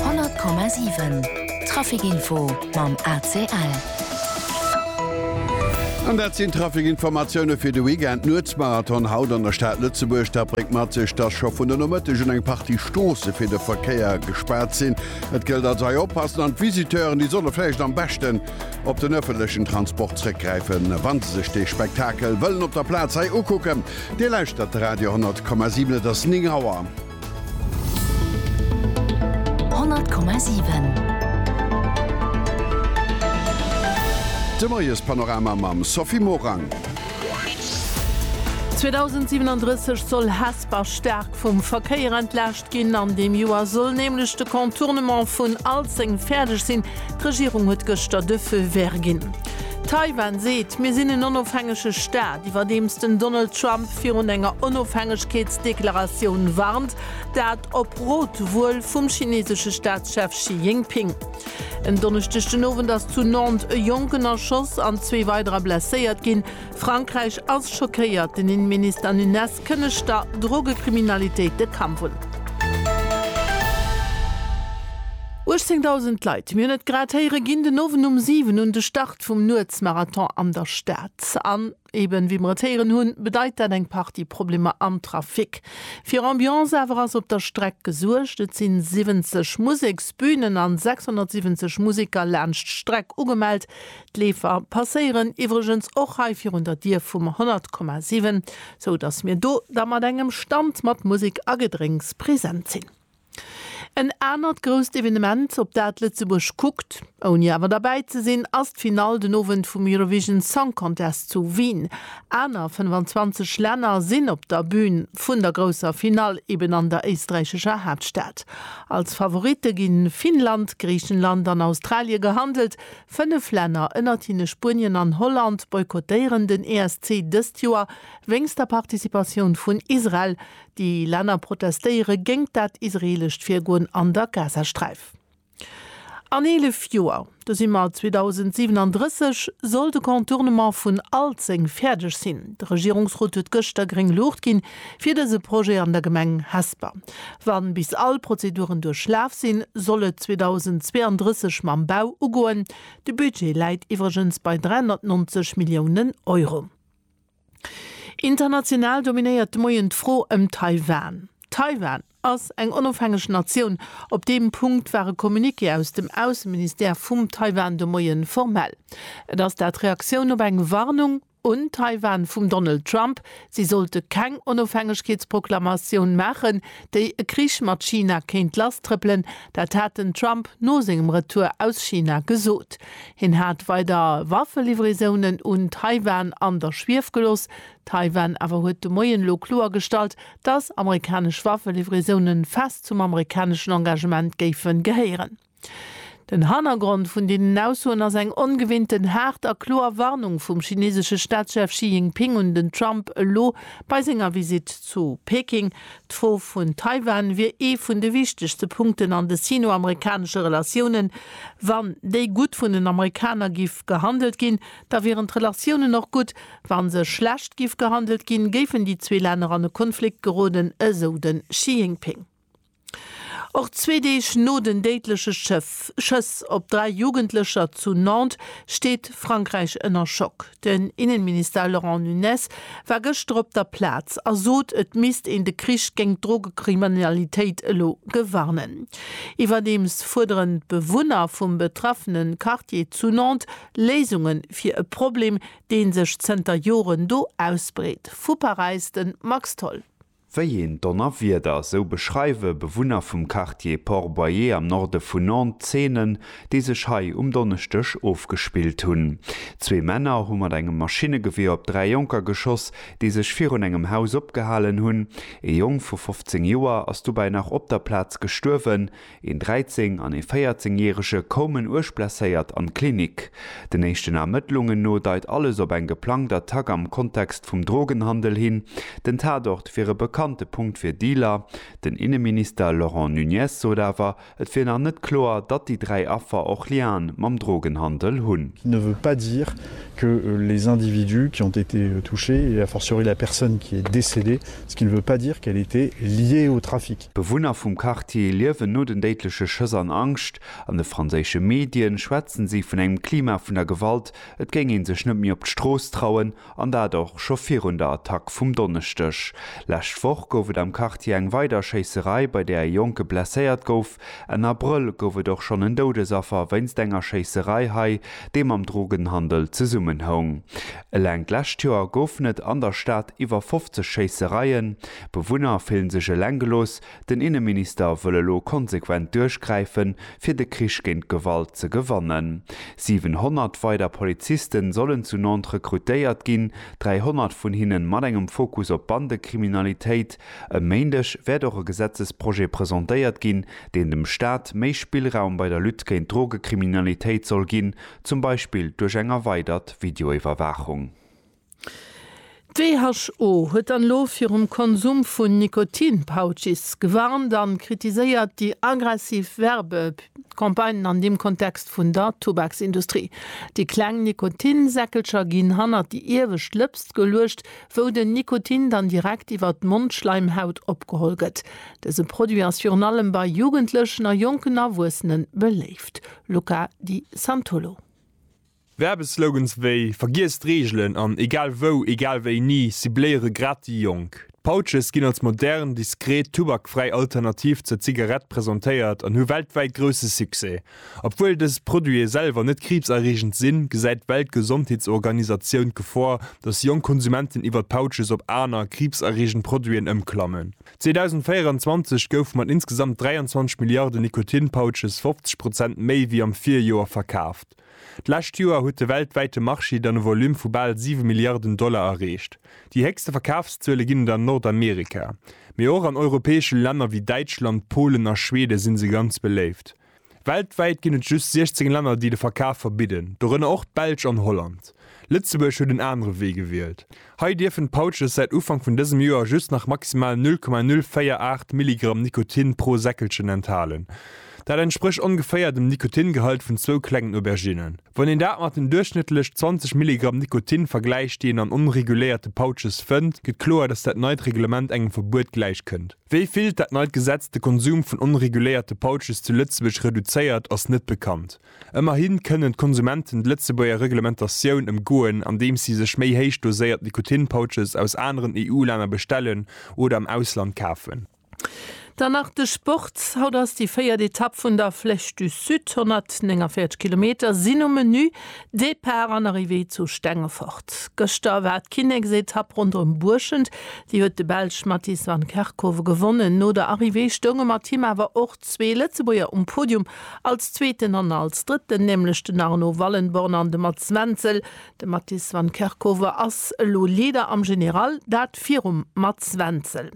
100,7 Traficinfo mam ACL. An dat sinn d'Traficinformatioune fir de Weekend. D'Nuetsmarathon haut an der Stad Lëtzebuerg. Dat bréngt mat sech, dass scho vun de Nomëtteg un eng Partie Stroosse fir de Verkéier gespaart sinn. Et gëllt also hei oppassen an d'Visiteuren, déi solle vläicht am beschten op den ëffentlechen Transport zréckgräifen, wa se sech dee Spektakel wëllen op der Plaz hei ukucken. Dir lauschtert Radio 10,7, et ass 9 Auer. 100,7. De Moiespanorama mam Sophie Morang. 2037 soll Hesper staark vum Verkéier entlaascht ginn. An deem Joer soll nämlech de Contournement vun Alzeng fäerdeg sinn. D'Regierung huet gëschter de Feu vert ginn. Taiwan seet, Mir sinn en onofhängege Staat, iwwerdeems den Donald Trump virun enger Onofhängegkeetsdeklaratioun warnt, dat op Rot wuel vum chinesesche Staatschef Xi Jinping. En Donneschdeg den Owend ass zu Nantes e Jonken erschoss an zwee weiderer blesséiert ginn. Frankräich ass schockéiert, den Inneminister Nunez kënnegt der Drogekriminalitéit de Kampf un. 18.000 Leit, mir hunn et grad héieren, ginn den Owend um 7 un de Start vum Nuetsmarathon an der Stad. An eben, wéi mer et héieren hunn, bedeit dat eng Partie Problemer am Trafic. Fir Ambiance awer ass op der Streck gesuergt. Et sinn 70 Museksbünen an 670 Museker laanscht d'Streck ugemellt, D'Leefer passéieren iwwregens och hei virun der Dier vum 100,7, sou datt mir do da mat engem Stand mat Musek a Gedrénks present sinn. En anert grousst Evenement, op dat Lëtzebuerg kuckt, ouni awer derbäi ze sinn, ass d'Finall den Owend vum Eurovision Song Contest zu Wien. Aner 25 Länner sinn op der Bün vun der grousser Finall, eben an der éisträichescher Haaptstad. Als Favoritte gi Finnland, Griichenland an Australie gehandelt, Fënnef Länner, ënnertinne Spuenien an Holland, boykottéieren den ESC dëst Joer wéinst der Participatioun vun Israel. Déi Länner protestéiere géingt dat israeelescht Virgoen an der Gazasträif. An 11 Joer, do si mer 2037, soll de Contournement vun Alzeng fäerdeg sinn. De Regierungsrot huet gëschter gréng Luucht ginn, Fir dëse Projet an der Gemeng Hesper. Wann bis all Prozeduren duerchlaf sinn, soll et 2032 mam Bau ugoen. De Budget läit iwwregens bei 390 Milliounen Euro. International dominéiert de Moien d'Fro ëm Taiwan. Taiwan ass eng onofhängeg Natioun. Op deem Punkt war e Communiqué aus dem Ausseministère vum Taiwan de Moien formell. Et ass dat Reaktioun op eng Warnung. un Taiwan vum Donald Trump, si sollte keng Onofhängegkeetsproklamatioun maachen, déi e Krich mat China kéint lasstrëppelen. Dat hat den Trump no sengem Retour aus China gesot. Hien hat weider Waffelivraisonen un Taiwan an der Schwief gelooss. Taiwan awer huet de Moien elo kloergestallt, datt amerikanesch Waffelivraisoune fest zum amerikaneschen Engagement géife gehéieren. Den Hannergrond vun deenen Aussoen ass eng ongewinnten haart a kloer Warnung vum chinesesche Staatschef Xi Jinping un den Trump elo bei senger Visitt zu Peking. D'Fro vun Taiwan wier ee vun de wichtegste Punkten an de sino-amerikanesche Relatiounen. Wann déi gutt vun den Amerikaner giff gehandelt ginn, da wieren d'Relatiounen och gutt. Wa se schlecht giff gehandelt ginn, géifen déi zwee Länner an e Konflikt geroden, esou de Xi Jinping. Och zwee Deeg no den déidleche Schëss op dräi Jugendlecher zu Nantes steet Frankräich ënner Schock. Den Innenminister Laurent Nunez war gëschter op der Plaz a sot, et misst een de Krich géint d'Drogekriminalitéit elo gewarnen. Iwwerdeems fuerderen d'Bewunner vum betraffene Quartier zu Nantes Léisunge fir e Problem, dee sech zënter Joren do ausbreet. Vu Paräis de Max Tholl. Wéi een Donnerwieder, esou beschreiwe Bewunner vum Quartier Port-Boyer am Norde vun Nantes d'Zeenen, déi sech hei um Donneschdeg ofgespillt hunn. Zwee Männer hu mat engem Maschinnegewier op dräi Jonker geschoss, déi sech virun engem Haus opgehalen hunn. Ee Jong vu 15 Joer ass dobäi nach op der Plaz gestuerwen. Een 13 an ee 14 järege koumen uerg blesséiert an d'Klinik. Den éischten Ermëttlungen no deit alles op eng geplangt Attack am Kontext vum Drogenhandel hin. Den Tatort wier e bekannte Punkt fir Dealer. Den Inneminister Laurent Nunez sot awer, et wier nach net kloer, datt déi dräi Affer och Liaen mam Drogenhandel hunn. Qui ne veut pas dire que les individus qui ont été touchés, et a fortiori la personne qui est décédée, ce qui ne veut pas dire qu'elle était liée au trafic. D'Bewunner vum Quartier liewen no den déidleche Schëss an Angscht. An de franséische Medien schwätzen si vun engem Klima vun der Gewalt, et géing ee sech net méi op d'Strooss trauen, an dat och scho virun der Attack vum Donneschdeg. Lescht Woch gouf et am Quartier eng weider Schéisserei, bei där e Jonke blesséiert gouf. Enn Abrëll gouf et och schonn en Doudesaffer wéinst enger Schéisserei hei, déi mam Drogenhandel zesummenhoung. Eleng d'lescht Joer goufen et an der Stad iwwer 50 Schéissereien. D'Bewunner fillen sech eleng gelooss, den Inneminister wëll elo konsequent duerchgräifen, fir de Krich géint d'Gewalt ze gewannen. 700 weider Polizisten sollen zu Nantes rekrutéiert ginn, 300 vun hinnen mat engem Fokus op Bandekriminalitéit. E Méindeg wäert och e Gesetzesprojet presentéiert ginn, deen dem Staat méi Spillraum bei der Lutte géint d'Drogekriminalitéit soll ginn, zum Beispill duerch eng erweidert Videoiwwerwaachung. D'WHO huet dann elo virum Konsum vun Nikotin-Pouches gewarnt a kritiséiert déi aggressiv Werbecampagnen an deem Kontext vun der Tubaksindustrie. Déi kleng Nikotinsäckelcher ginn hannert déi iewescht Lëpst geluecht, wou den Nikotin dann direkt iwwer d'Mondschleimhaut opgeholl gëtt. Dëse Produit ass virun allem bei Jugendlechen a jonken Erwuessene beléift. Luca Di Santullo. Werbeslogans wéi Vergiess d'Reegelen an Egal wou, egal wéini cibléiere grad déi Jonk. D'Pouches ginn als modern, diskret, tubakfräi Alternativ zur Zigarett presentéiert an hu weltwäit grousse Succès. Obwuel dës Produite selwer net kriibserreegend sinn, gesäit d'Weltgesondheetsorganisatioun d'Gefor, datt jonk Konsumenten iwwer d'Pouches op aner, kriibserreegend Produiten ëmklammen. 2024 goufe mat insgesamt 23 Milliarde Nikotin-Pouches 50 Prozent méi wéi am Virjoer verkaaft. D'lescht Joer huet de weltwäite Marché dann e Volume vu bal siwe Milliarden Dollar erreecht. Déi héchste Verkafszuele ginn et an Nordamerika, mee och an europäesche Länner wéi Däitschland, Polen a Schwede si se ganz beléift. Weltwäit ginn et just 16 Länner, déi de Verkaf verbidden, dorënner och d'Belsch an Holland. Lëtzebuerg huet en anere Wee gewielt. Hei dierfen d'Pouches säit Ufank vun dësem Joer just nach maximal 0,048 Milligramm Nikotin pro Säckelchen enthalen. Dat entsprécht ongeféier dem Nikotingehalt vun zwou klengen Auberginnen. Wann een dat mat den duerchschnëttlech 20 Milligramm Nikotin vergläicht, déi een an onreguléierte Pouches fënnt, gëtt kloer, datt dat neit Reglement engem Verbuet gläich kënnt. Wéi vill dat neit Gesetz de Konsum vun onreguléierte Pouches zu Lëtzebuerg reduzéiert, ass net bekannt. Ëmmerhi kënnen d'Konsumenten d'Lëtzebuerger Reglementatioun ëmgoen, andeems si sech méi héich doséiert Nikotinpouches aus aneren EU-Länner bestellen oder am Ausland kafen. Dann nach de Sport, Haut ass déi véiert Etapp vun der Flèche du Sud, 149 Kilometer sinn um Menü, Depart an Arrivée zu Stengefort. Gëschter war d'Kinneksetapp ronderëm Buerschent, déi huet de Belsch Mathies Van Kerkhove gewonnen. No der Arrivée stounge mat him awer och. Zwee Lëtzebuerger um Podium, als Zweeten an als Drëtten, nämlech den Arno Wallenborn an de Mats Wenzel. De Mattis van Kerkhoven ass elo Leader am General, dat virum Mats Wenzel.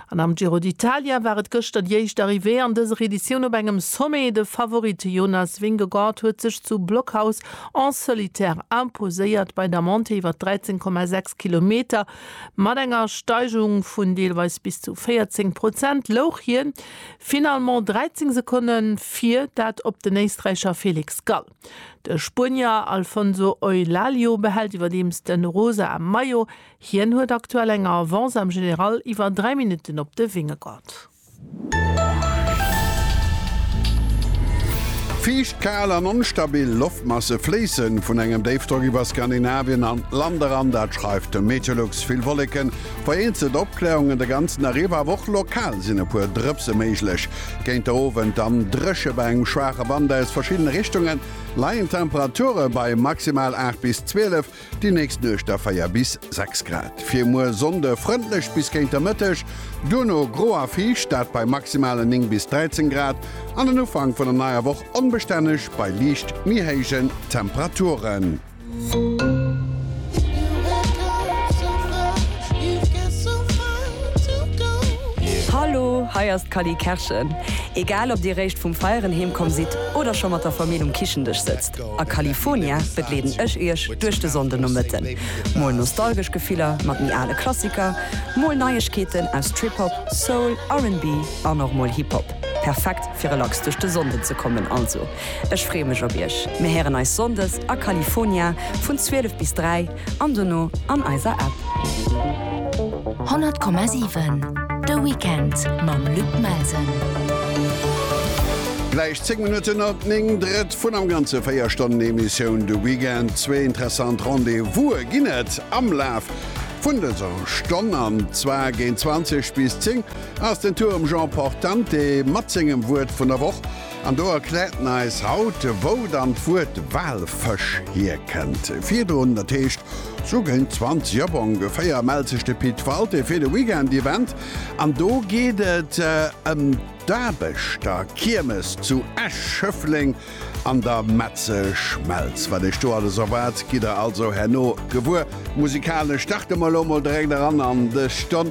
An am Giro d'Italia war et gëschter déi éischt Arrivée an dëser Editioun op engem Sommet. De Favorit Jonas Vingegaard huet sech zu Blockhaus en solitaire imposéiert bei der Montée iwwer 13,6 Kilometer. Mat enger Steigung vun deelweis bis zu 14 Prozent louch hien Finalement 13 Sekonne vir dat op den Éisträicher Felix Gall. De Spuenier Alfonso Eulalie behält iwwerdeems de rosa Maillot. Hien huet aktuell eng Avance am General iwwer 3 Minutten op de Vingegaard. Fiicht, kal an onstabil Loftmasse fléisse vun engem Déifdrock iwwer Skandinavien an d'Land eran, dat schreift de Meteolux. Vill Wolleken. Vereenzelte Opkläerungen de ganzen Dag iwwer, awer och lokal sinn e puer Drëpse méiglech. Géint de Owend dann dréche bei engem schwaache Wand aus verschiddene Richtungen. Leien d'Temperature bei maximal 8 bis 12, déi nächst Nuecht da 4 bis 6 Grad. Fir muer Sonnde frëndlech bis géint de Mëtteg, duerno gro a fiicht, dat bei maximale 9 bis 13 Grad, an den Ufank vun der neier Woch onbestänneg bei liicht méi héijen Temperaturen. Hallo, hei ass d'Cally Kerschen. Egal ob dir réischt vum Feieren heem komm sidd oder scho mat der Famill um Kichendësch sëtzt, a Califonia begleeden ech iech duerch de Sonndenomëtten. Mol nostalgesch Gefiller mat méi ale Klassiker, mol Neiegkeeten aus Trip-Hop, Soul, RB an och mol Hip-Hop. Perfekt fir relax duerch de Sonnden ze kommen also. Ech freeë mech op iech. Mir héieren eis Sonndes a California vun 12 bis 3 an dono an eiser App. 100,7 De Weekend mam Luc Melsen. Gläich 10 Minutten no 9, drëtt vun am Ganze 4 Stonnen Emissioun De Weekend. Zwee interessant Rendez-vous'e ginn et am Laf vun dëser Stonn, an zwar géint 20 bis 10 ass den Tour um Jean Portante mat sengem Wuert vun der Woch. An do erkläert en eis haut, wou dann d'Wuert Walfësch hierkënnt. Virdrun, dat heescht sou géint 20 op ongeféier, mellt sech de Pit Walté fir de Weekend-Event. An do geet et ëm d'Aarbechter-Kiermes zu Esch-Schëffleng an der Metzeschmelz. Wat Iech do alles erwaart, gitt der also herno gewuer. Musikalesch starte mer elo mol direkt eran an dës Stonn.